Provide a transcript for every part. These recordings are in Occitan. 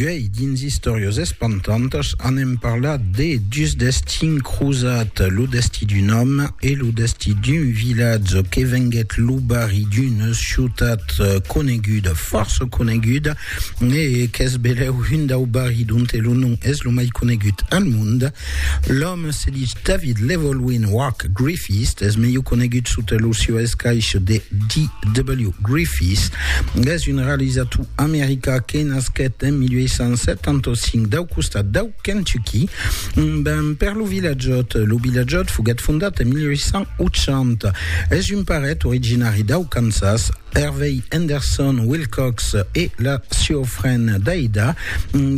D'uèi dins Istòrias espantantas anem parlar de dus destins crosats, lo destí d'un òme e lo destí d'un vilatge que venguèt lo barri d'una ciutat coneguda, fòrça coneguda, e qu'es belèu un dau barri donte lo nom es lo mai conegut al monde. L'òme se dich David Llewelyn Wak Griffiths, es melhor conegut sota lo sieu escaich de D.W. Griffiths. Es un realizator americà que nasquèt en 1875 dau costat dau Kentucky, ben per lo Vilatjòt. Lo Vilatjòt foguèt fondat en 1880. Es un paret originari dau Kansas. Hervey Henderson Wilcox e la sieu frend Daida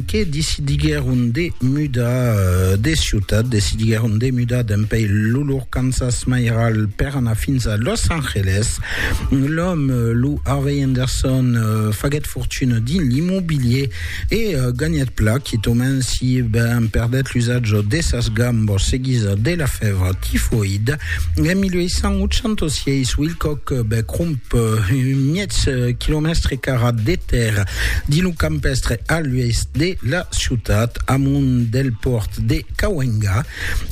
que decidiguèron de mudar de ciutat, decidiguèron de mudar dempèi lo lor Kansas mairal per anar fins a Los Angeles. L'òme, lo Harvey Henderson, faguèt fortuna dins l'immobilier E ganhèt pla, quitament si ben perdèt l'usatge de sas gambas seguisa de la fèvra tifoïda. En 1886, Wilcock bè cromp un miètz quilomèstre carat de tèrra dins lo campèstre a l'oèst de la ciutat, amont del pòrt de Cahuenga.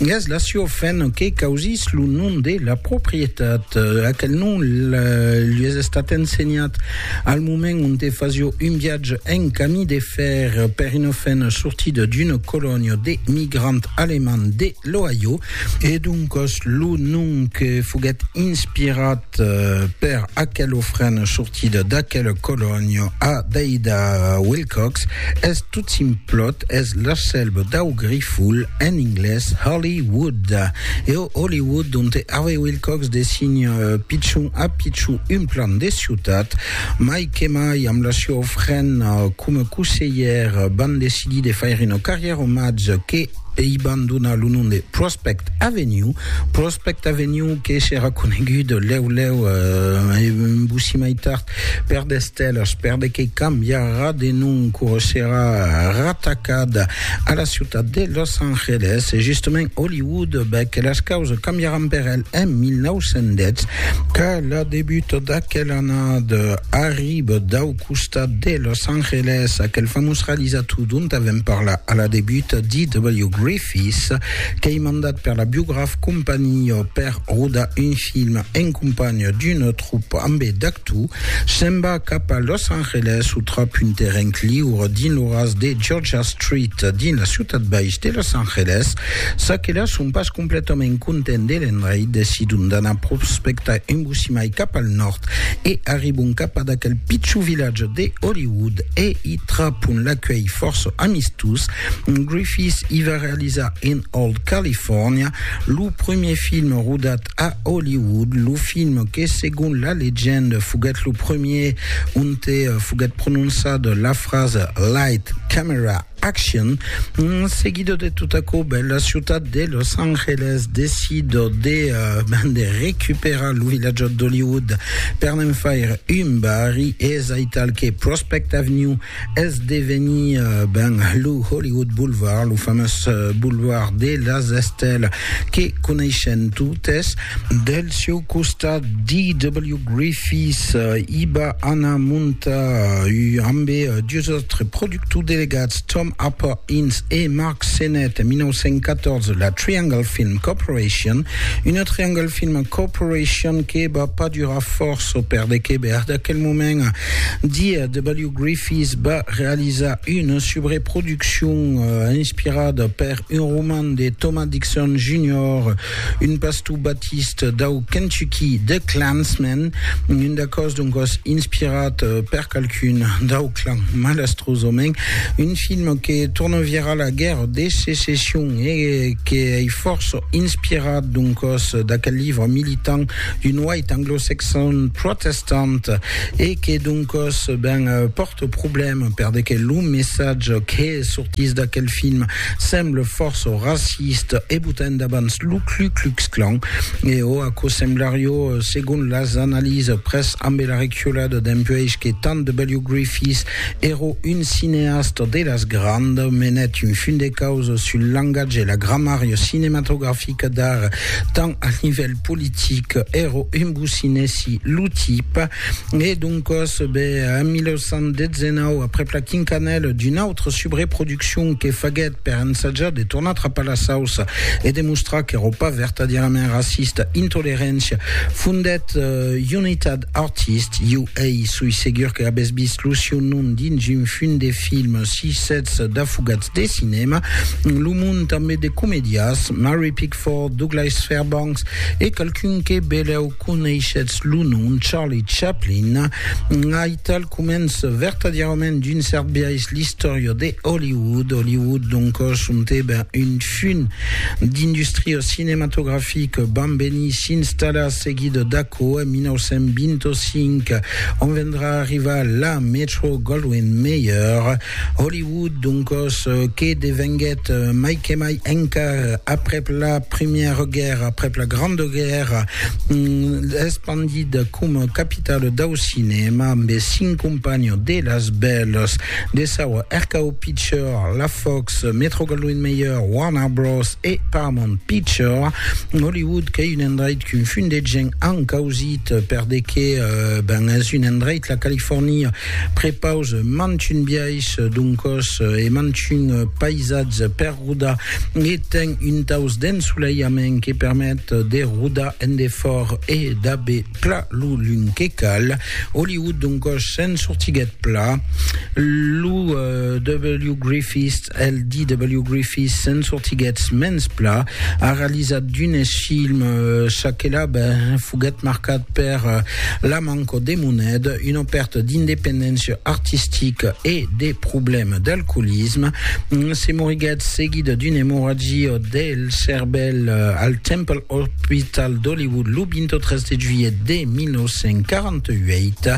Gas la Ciofen que causís lo nom de la proprietat. Aquel nom lui es estat ensenhat al moment onte fasió un viatge en camí de fèr per una fen sortida d'una colònia de migrants alemands de l'Ohio, e doncas lo nom que foguèt inspirat Per aquel ofren sortit d'aquel colòni a Deida Wilcox es tot simplot, es l'asselb dau grifol, en inglés Holly Wood. E o Holly Wood donte Harvey Wilcox design pichon a pichon un plan de ciutat, mai que mai amb la sua ofrena coma coselhèr van decidir de faire una carrièra omatge que Ei ban donar lo nom de Prospect Avenue, Prospect Avenue que s'era conegut lèu lèu e vossi mai tard per de stèlas, per de que cambiarà de nom quò serà ratacat a la ciutat de Los Angeles, e justament Hollywood, bèth que las causas cambiaràn per el en 1910, qu'a la debut d'aquel annada arriba dau costat de Los Angeles, aquel famós realizator dont avèm parlat a la debut, D.W. Griffith, qu'ei mandat per la Biograph Company per rodar un film en companha d'una tropa ambé d'actors, se'n va cap a Los Angeles o trap un terrenc liure dins lo ras de Georgia Street dins la ciutat baix de Los Angeles, çaquelas son pas Completament content de l'endreit, decidon d'anar prospectar un bocí mai cap al nòrd e arribon cap ad aquel pichon vilatge de Hollywood e i trapon l'acuelh fòrça amistós. Griffith i va realizar In Old California, lo premier film rodat a Hollywood, lo film que segon la legenda foguèt lo premier onte foguèt prononçada la frasa Light, Camera, Action. En seguida de tot aquò, ben, la ciutat de Los Angeles decida de, ben, de recuperar lo vilatjat d'Hollywood per ne'n faire un barri, e es aital que Prospect Avenue es devenir, ben, lo Hollywood Boulevard, lo famós boulevard de las estèlas que coneishem totes. Del sieu costat, D.W. Griffith i va anar montar, ambe dus autres productors, Todelegats Tom Harper Ince e Mark Sennett, 1914, la Triangle Film Corporation, una Triangle Film Corporation que va pas durar fòrça perdeque bèr d'aquel moment dia W. Griffiths va realizar una subreproduccion inspirada per un roman de Thomas Dixon Junior, Un pastor batista dau Kentucky, The Klansmen, un dacòs doncas inspirat per qualqu'un dau Klan, malastrosament, un film que torna virar la Guèrra de Secession e que ei fòrça inspirat doncas d'aquel livre militant d'un white anglo-saxon protestant e que doncas ben pòrta problèma per de que lo messatge que sortís d'aquel film Semble fòrça raciste e botain davans lo Klu Klux Klan, e ò aquò semblarió, segon las analises, pres ambe la reculada dempuèish que Tant W. Griffith èro un cineasta de las grand, menèt un fum de causa sul langatge e la gramària cinematografica d'ara tant al nivèl politic, èro un bocinèsi lo tipe. E doncas, be, en 1819, aprèp la quincanèla d'una autra subreproduccion que faguèt per ensajar de tornar trapar la sauça e de mostrar qu'èra pas vertadièrament racista, Intoleréncia fondèt Unitat Artist, UA, soi segur que avètz vist lo sieu nom dins un fum de film, si sètz d'afogats de cinèma, lo mond tanben de comedias, Mary Pickford, Douglas Fairbanks e qualqu'un que belèu. Coneishetz lo nom Charlie Chaplin? Aital comença vertadièrament d'un cèrt biais l'istòria de Hollywood. Hollywood, donc, sonte ben un fum d'industria cinematografica van venir s'installar seguida d'aquò en 1925, ont vendrà arribar la Metro-Goldwyn-Mayer, Hollywood, doncos, que devenguèt mai que mai encar aprèp la Primièra Guèrra, aprèp la Granda Guèrra, espandida coma capitala dau cinèma amb es cinc companhons de las bèlas de saua RKO Picture, la Fox, Metro-Goldwyn-Mayer, Warner Bros. E Paramount Picture. Hollywood qu'ei un endreit qu'un fum de gent an causit per de que, ben, es un endreit, la Califòrnia, Prepause mantun biais d'un còs e mantun paisatge per rodar e ten un taus d'ensoleiament que permet de rodar en defòrt e d'aver pla lo lum que cal. Hollywood d'un còs se'n sortiguèt pla. Lo W. Griffith El DW Griffith se'n sortiguèt mens pla, a realizat d'unes films, çò que la ben foguèt marcat per la manca de moneda, una pèrta d'independéncia artistica e de problèmas d'alcoolisme. Se moriguèt seguida d'una emorragia del cervèl al Temple Orpital d'Hollywood lo 23 de juilhet de 1948.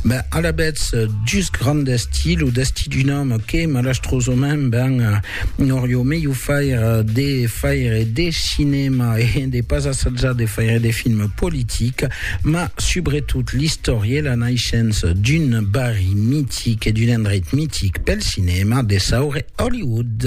Ben, alavetz, dus grand destí, lo destí d'un òme que, malastrosament, ben, n'aurió melhor faire de faire de cinèma e de pas assajar de faire de film politic, mas subretot l'istòria e la naishença d'un barri mitic e d'un endreit mitic pel cinèma, de saure Hollywood.